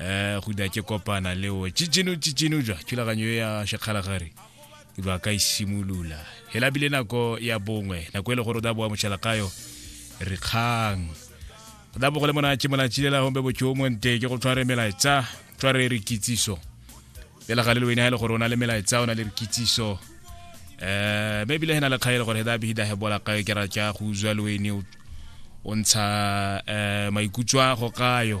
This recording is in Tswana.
eh go da ke kopana le o chichinu chichinu jwa thulaganyo e ya shekgalagare ke ba ka isimolola e hela bile nako ya bongwe nako e le gore o da boa mošalakayo re kgang o da bogole mona ke mona chilela hombe bo tšomo nte ke go tshware melaetsa tshware re kitsiso pela ga le le wena e le gore o na le melaetsa o na le re kitsiso eh maybe le hena le kgaele gore da bihida he bola kae ke ra tja go uzwa le wene o ntsha eh maikutswa go kayo